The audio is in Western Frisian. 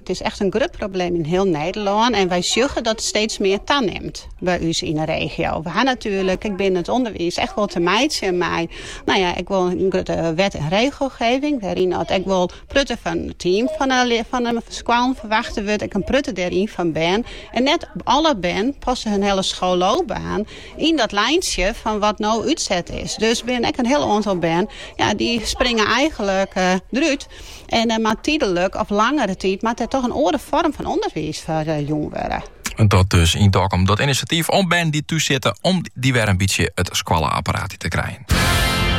It is echt in grut probleem yn hiel Nederlân en wy sjogge dat it steeds mear tanimt by ús yn 'e regio. We ha natuerlik ek binnen it ûnderwiis echt wol te meitsjen mei no ja, ek wol in grutte wet en regelgeving wêryn dat ek wol in protte fan it team fan 'e fan 'e skoallen ferwachte wurdt, ek in protte dêryn fan bern. En net alle bern passe hun hiele skoalloopbaan yn dat lijntsje fan wat no útset is. Dus binne ek in hiel oantal bern ja, dy springe eigenlik derút. En mar tydlik of langere tiid moat der toch in oare foarm fan ûnderwiis foar jûn wurde. Dat dus yn Dokkum dat inisjatyf om bern dy't thús sitte, om dy wer in bytsje it skoalle-apparaat te krijen.